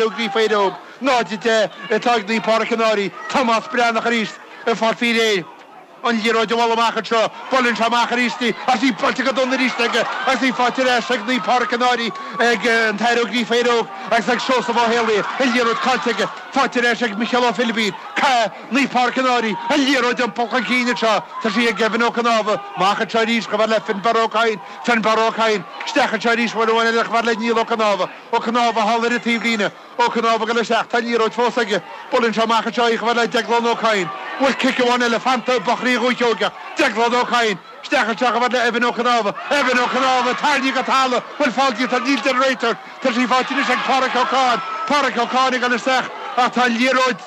Gríofa Éire Óg, 0-10 ag Naomh Pádraic an Fhairche Tomás Breathnach arís ag fáil faoi réir. An liathróid a bhualadh amach anseo, buaileann sé amach arís í agus í buailte go dona arís aige agus í faighte ar ais ag Páirc an Áir ag an tAthair Ó Gríofa Éire Óg agus ag Seosamh Ó hÉalaí. An liathróid caillte aige, faighte ar ais ag Micheál Ó Philibín. Naomh Pádraic an Fhairche, an liathróid iompaithe chun cinn anseo, tá sí ag Gavin Ó Cnámha. Amach anseo arís, chomh fada le Finbarr Ó Cadhain. Finbarr Ó Cadhain, isteach anseo arís, uair amháin eile chomh fada le Niall Ó Cnámha. Ó Cnámh, a tharla i rith taobhlíne. Ó Cnámh ag dul isteach. Tá liathróid fós aige. Buaileann sé amach anseo í chomh fada le Deaglán Ó Cadhain. An bhfuil cic amháin eile fanta ag buachaillí Dhúiche Sheoigheach? Deaglán Ó Cadhain. Isteach anseo chomh fada le Evan Ó Cnámha. Evan Ó Cnámha! Tarraingthe go talamh! An bhfuil feall déanta, níl a deir an réiteoir. Tá sí faighte anois ag Páraic Ó Cadhain. Páraic Ó Cadhain ag dul isteach. Ach tá liathróid,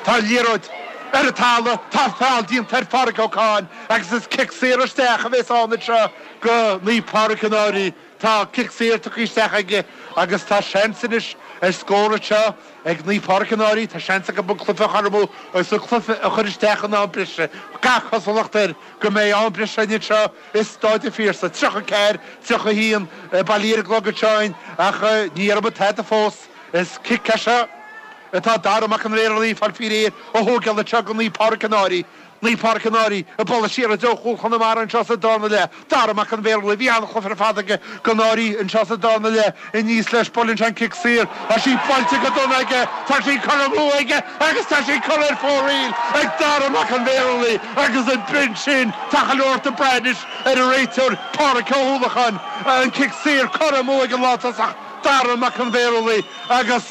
tá liathróid ar an talamh. Tá feall déanta ar Pháraic Ó Cadhain agus is cic saor isteach a bheas ann anseo do Naomh Páraic an Fhairche. Tá cic saor tugtha isteach aige agus tá seans anois ar scór anseo ag Naomh Pádraic an Fhairche. Tá seans acu an cluiche a chothromú agus an cluiche a chur isteach in am breise. Gach cosúlacht air go mbeidh am breise againn anseo i Stáid an Phiarsaigh. 34, 31 bailithe ar an gclog anseo againn ach ní dhearna muid tada fós. Is cic é seo atá Dara Mac an Bhéarlaí ag fáil faoi réir a thógáil anseo do Naomh Pádraic an Fhairche. Naomh Pádraic an Fhairche ag bualadh siar i dtreo chúl Chonamara anseo sa dara leath Dara Mac an Bhéarlaí. Bhí an-chluiche ar fad aige don Fhairche anseo sa dara leath Aníos leis Buaileann sé an cic saor tá sí buailte go dona aige tá sí curtha amú aige agus tá sí curtha ar fóraoil ag Dara Mac an Bhéarlaí agus ab in sin tá go leor ag brath anois ar an réiteoir Pádraic Ó hUallacháin an cic saor curtha amú ag an lántosach Dara Mac an Bhéarlaí agus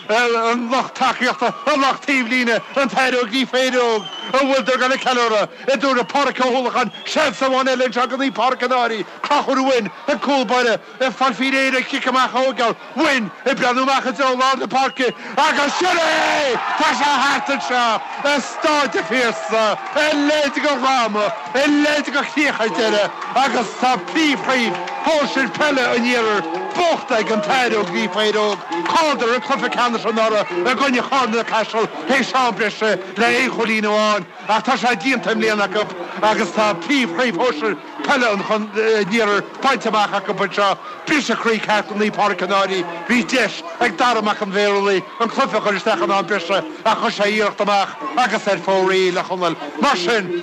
ar an lucht tacaíochta ar lucht taobhlíne an tAthair Ó Gríofa Éire Óg an bhfuil siad ag gabháil ag ceiliúradh, an dtabharfaidh Páric Ó hUallacháin, Seans amháin eile anseo do Naomh Páric an Fhairche Conchúr Mhoin an cúl báire ag fáil faoi réir an cic amach a thógáil Mhoin ag breathnú amach i dtreo lár na páirce agus Sin é! Tá sé thart anseo! I Stáid an Phiarsaigh a leithéid de dhráma, a leithéid de chríoch ar deireadh agus tá príomhchraobh shóisir peile an iarthair buaite ag an tAthair Ó Gríofa Éire Óg, chailleadar an cluife ceannais anuraidh i gcoinne Charna Caiseal théis am breise le aon chúilín amháin ach tá sé déanta i mbliana acu agus tá príomhchraobh shóisir peile an chon, an iarthair bainte amach acu anseo, briseadh croí ceart do Naomh Pádraic an Fhairche. Bhí deis ag Dara Mac an Bhéarlaí an cluiche a chur isteach in am breise ach chuir sé iarracht amach agus ar fóraoil a Chonaill. Mar sin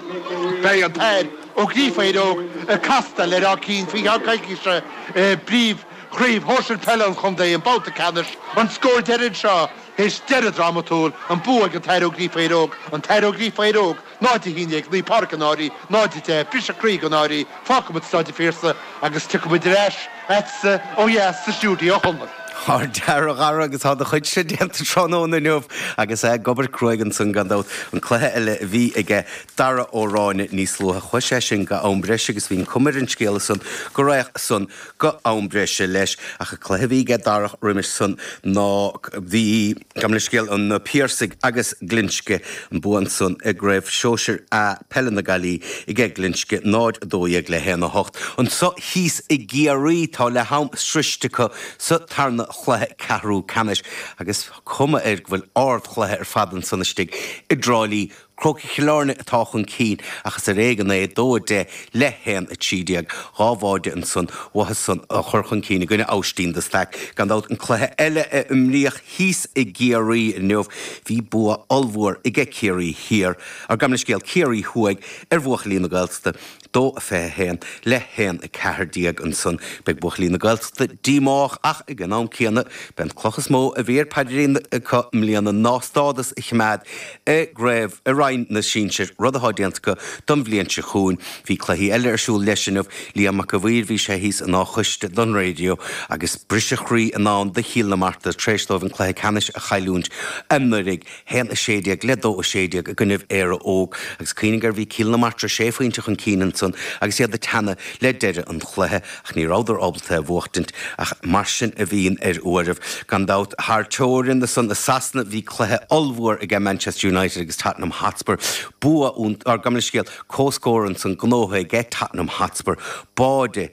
beidh an tAthair Ó Gríofa Éire Óg, ag castáil ar Áth Cinn faoi cheann coicíse i bpríomhchraobh shóisir peile an chontae, an babhta ceannais. An scór deiridh anseo, théis deireadh drámatúil, an bua ag an tAthair Ó Gríofa Éire Óg, An tAthair Ó Gríofa Éire Óg, 0 11 Naomh Pádraig An Fhairche, 0 10 briseadh croí ag An Fhairche, fágfaimid Staid an Phiarsaigh agus tiocfaimid ar ais chugatsa ó dheas sa stiúideo shona. Tá an dara, a Dhara agus tá do chuidse déanta tráthnóna inniu agus é ag obair cruaidh ansan gan dabht. An cluiche eile a bhí aige, Dara Ó Ráinne, níos luaithe, chuaigh sé sin go am breise agus bhí an chuma ar an scéal san go raghadh san, go am breise leis. Ach an cluiche a bhí aige Dara roimis san ná bhí, gabh mo leithscéal, na Piarsaigh agus Glinsce, an bua ansan i gCraobh Shóisir A Peile na Gaillimhe aige Glinsce, 0, 12 le 1, 8. Anseo thíos i gCiarraí tá leath am sroiste acu sa tarna chluiche ceathrú ceannais agus tá cuma air go bhfuil ard chluiche ar fad ansan istigh i dTráilí. Crócaigh Chill Airne atá chun cinn ach is ar éigean é, 2 10 le 1 13. Dhá bháide ansan uathu san a chuir chun cinn i gcoinne Aibhistín de Staic. Gan dabht, an cluiche eile a imríodh thíos i gCiarraí inniu, bhí bua ollmhór aige Ciarraí Thiar, ar gabh mo leithscéal, Ciarraí Thuaidh, ar bhuachaillí na Gaeltachta. dó a 21 le haon 14 ansan beidh buachaillí na Gaeltachta díomách ach ag an am céanna b'é an chloch is mó a bhí ar a bpaidrín acu i mbliana ná stádas a chimeád i gcraobh i roinn na sinsir rud athá déanta acu don bhliain seo chugainn. Bhí cluichí eile ar siúl leis inniu. Liam Mac a' Mhaoir bhí sé thíos in Áth an Chóiste don raidió agus briseadh croí i ndán do Chill na Martra tréis dóibh an cluiche ceannais a chailliúint anuiridh. haon a sé déag le dó a sé déag i gcoinnibh Éire Óg agus cuimhnigh gur bhí Cill na Martra sé phointe chun cinn ansan agus iad ag teannadh le deireadh an chluiche ach ní rabhadar ábalta é a bhuachtaint ach mar sin a bhíonn ar uairibh. Gan dabht thar teorainn ansan i Sasana bhí cluiche ollmhór aige Manchester United agus Tottenham Hotspur. Bua, á, gabh mo leithscéal, comhscór ansan, gnóithe aige Tottenham Hotspur, báide,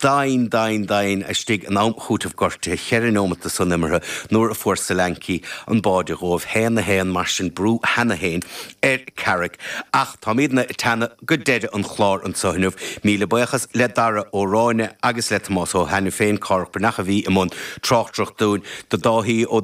Doimhin, doimhin, doimhin istigh in am cúitimh gortuithe cheithre neomat de san imeartha nuair a fuair Solanke an báide dhóibh haon a haon mar sin brú cheana féin ar Carrick ach táimidne ag teannadh go deireadh an chlár anseo inniu. Míle buíochas le Dara Ó Ráinne agus le Tomás Ó hAiniféin, Cárthach Breathnach a bhí i mbun tráchtaireacht dúinn. Do Dáithí Ó